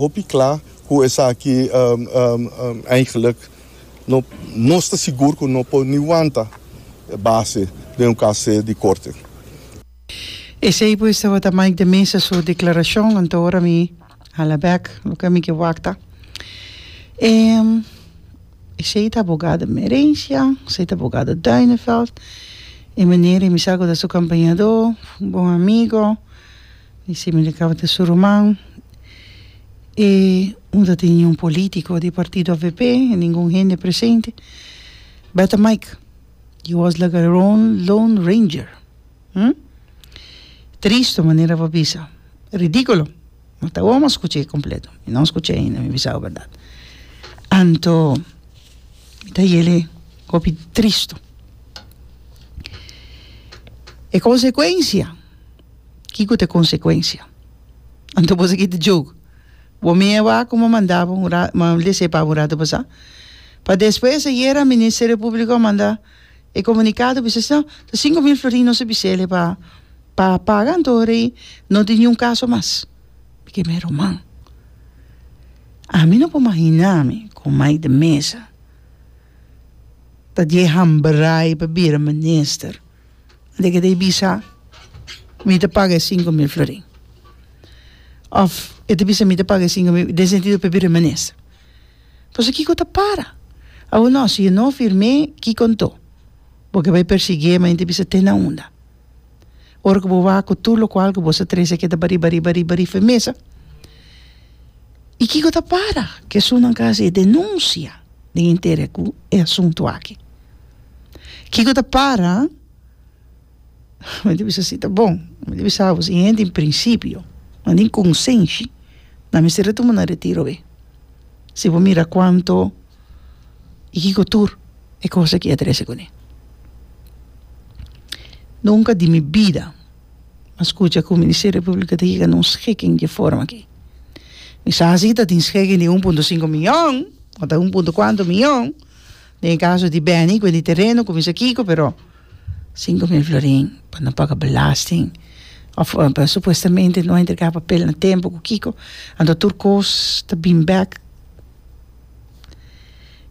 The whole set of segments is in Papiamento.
Hopi kla ku esaki eigelik no nos ta sigur ku no por ni wanta base den un kas se di korte. Esei pues tabata Mike de Meza su deklarashon, anto ora mi hala bèk loke ami ke wakta. Esei ta abogado Merencia, esei ta abogado Duineveld, e manera mi sa ku ta su kampañadó, bon amigo, Mi simi di kabata su ruman e no ta tin ningun politico di partido avp ningun hende presente beta mike he was like a rone lone ranger hm tristo manera a bisa ridiculo ma ta awor mi a scucha e completo mi no a scucha ainda mi bisao berdad anto mi ta yele hopi tristo e consecuencia. Kiko ta e konsekuensia? Anto boso kita joke? Bo mi e wak ku mi a manda bo un rato, mi a lese pa bo un rato pasá. Pa despues ayera e Ministerio Públiko a manda e komunikado ku bisha no, ta sinku mil florin nos a bis'el'e pa pa paga anto ora ei no tin niun kaso mas. Mi keda mira ruman. Ami no por imaginá mi ku Mike Meza ta di e hambrai pa bira minister. de keda e bisa mi ta paga e sinku mil florin of e ta bisa mi ta paga e sinku mil den sentido pa e bira menes pasobra kiko ta para awo no si yo no firm'e kiko anto bo ke bai persigui'e ma yenta bisa te na unda ora ku bo wak ku tur lokual ku bo sa trese a keda bari bari bari bari firmesa i kiko ta para kesunnan kasi e denunsia den e intere ku e asuntu aki. Kiko ta para? Mi ta bisa si ta bon, mi ta bisa bo si den principio, nan den consenshi nan mester ta tuma nan retiro awé, si bo mira cuanto y kiko tur e cosa ki a trese kuné. Nunca di mi bida a scucha cu Ministerio Publico ta yega na un schiking dje forma aki. Mi sa si tatin schiking di un punto sinku miyon, ota un punto cuanto miyon Den e kaso di Benny ku e di tereno ku bisa kiko pero sinku mil florin pa no paga belasting òf supuestamente no a entrega papel na tempu ku kiko anto tur kos ta bin bèk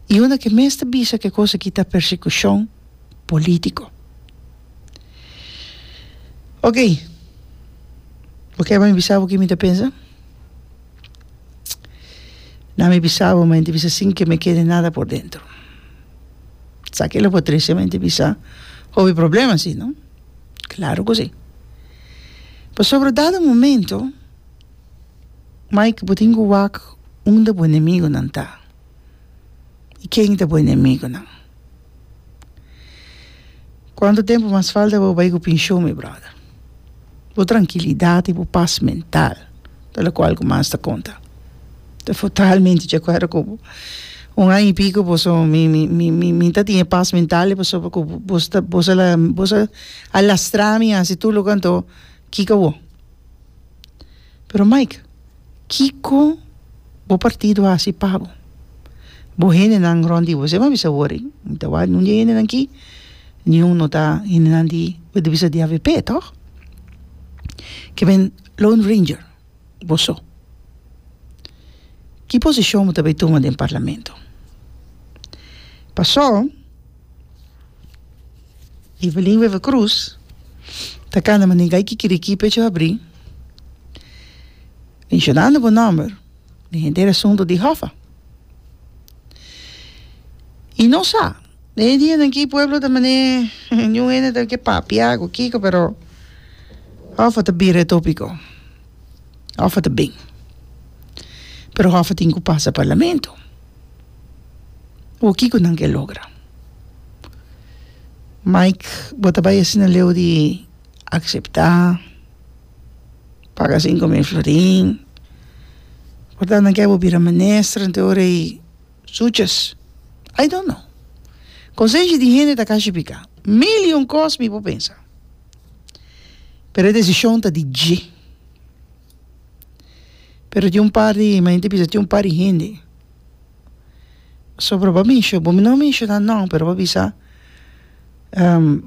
i una ke mes ta bisa ke kos aki ta persekushon polítiko oke bo kèr pa mi bisa bo ke mi ta pensa? Na mi bisa bo, ma enta bisa sin ke me kede nada por dentro. Sa ke lo por trese, ma enta bisa hopi problema si no? Claro ku si. Pasobra dado momento mai ke bo tin ku wak unda bo enemigonan ta i ken ta bo enemigonan. Cuantu tempu mas falta pa bo bai cu pension mi brother? Bo trankilidad y bo pas mental ta locual cu mas ta conta ta totalmente de acuerdo cu bo un aña y pico boso mi mi mi mi mi ta tin e pas mental pasobra cu boso ta boso la boso a lastra mi a haci tur loke anto kiko awor pero Mike Kiko bo partido a hasi pa bo? Bo hendenan rond di bo se bo bisa wori, mi ta wak un di e hendenan aki, niun no ta hendenan di bo ta bisa di avp tòg? Ke men lone ranger bo so. Ki posishon bo ta bay tuma den parlamento? Paso Evelyn Wever Croes ta cana Manigay Kikiriki pecho habri, mencionando bo nomber den henter asunto di Hoffa. Y no sa, den e dianan aki pueblo ta mane niun hende ta ke papia cu kico pero Hoffa ta bira e topico, Hoffa ta bin, pero Hoffa tin cu pasa Parlamento. o kiko nan ke logra Mike bo ta bai asina leu di akseptá paga sinku mil florin por tanto nan ke bo bira minister te ora i suches I don't know konsensha di hende ta kashi pika mil i un kos mi por pensa pero e desishon ta di dje pero tin un par di mi yete bisa tin un par di hende so por bo mensho bo no menshona no pero bo bisa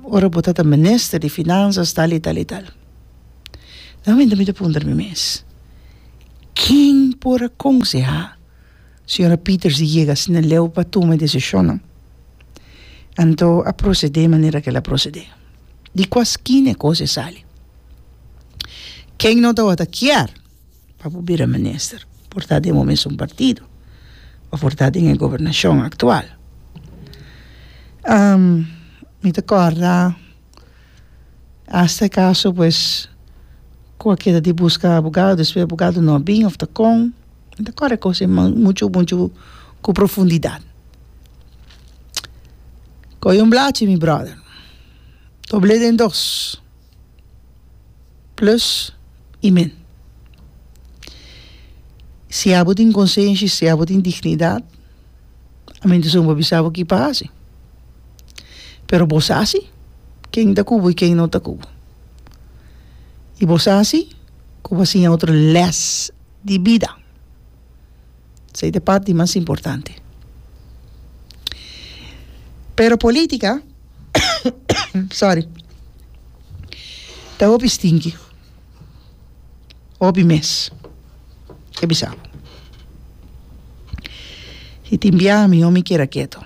ora bo tata minister di finanzas tal y tal y tal na momento mi ta puntra mi mes ken por a konseha señora Peters di yega asina leu pa tuma e desishonnan anto a prosede manera kela prosede di kua skina e kos a sali. Ken no tabata kier pa por bira minister por ta den bo mesun partido o por ta den e gobernashon aktual. mi ta kòrda asta e kaso pues ku a keda di buska abogado despues abogado no a bin of ta kon, mi ta kòrda e kos ei muchu muchu ku profundidat. Kòj un blachi mi bròder, dobl'e den dos. plus y min. Si abo tin konsenshi, si abo tin dignidad, a mi disun bo bisa bo ki pa hasi. Pero bo sa si ken ta ku bo y ken no ta ku bo. Y bo sa si ku bo a siña otro lès di bida. Esei ta e part di mas importante. Pero politica sorry ta hopi stinki, hopi mes, ke bisa bo. Si tin biaha mihó mi keda keto.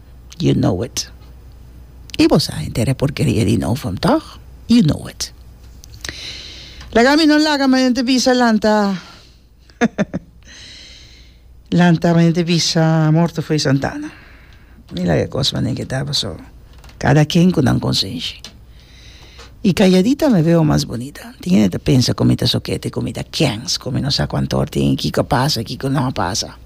You know it. I bo sa henter e porkeria di Novum, tòg? You know it. Laga mi no laga mañana te bisa lanta lanta mañana te bisa morto fo'i Santana. Mi laga e kos manen ke ta paso. Kada ken ku nan konsenshi. Y calladita me veo mas bonita. Tin hende ta pensa cu mi ta sokete, cu mi ta kens, cu mi no sa cu antor tin y kico a pasa, kico no a pasa.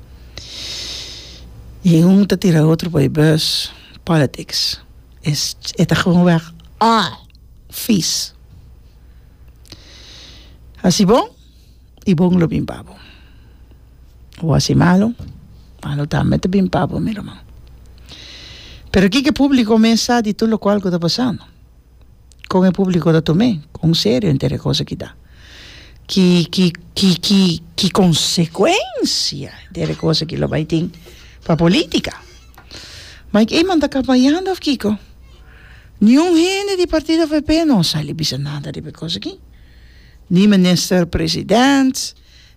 Y un ta tira otro pa e bus. Politics es, e ta gewoon weg aal, vies. Hasi bon. I bon lo bin pa bo. Bo hasi malu, malu tambe ta bin pa bo, mi ruman. Pero kiko e públiko mes sa di tur lokual ku ta pasando? Kon e públiko ta tom'é kon serio henter e kos aki ta? Ki, ki, ki, ki, ki konsekuensia henter e kos aki lo bai tin pa polítika? Mike Eman ta kampañando òf kiko? Niun hende di partido FP no a sali bisa nada riba e kos aki. Ni Minister President,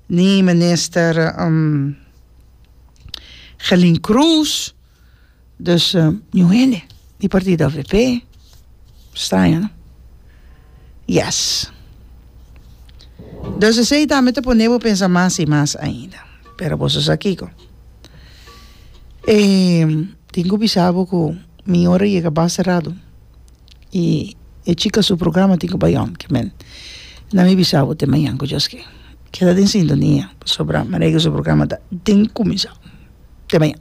ni Minister Gelin Croes, dus niun hende di partido avp, straño no? Yes. Dus esei ta mi ta pone bo pensa mas i mas ainda, pero boso sa kiko? tin ku bisa bo ku mi ora yega basta radu. y e chica su programa tin cu bay on ki men nan mi bisa bo te mañan cu djos ki keda den sintonia pasobra Maria Guillo su programa ta den cuminsa te mañan.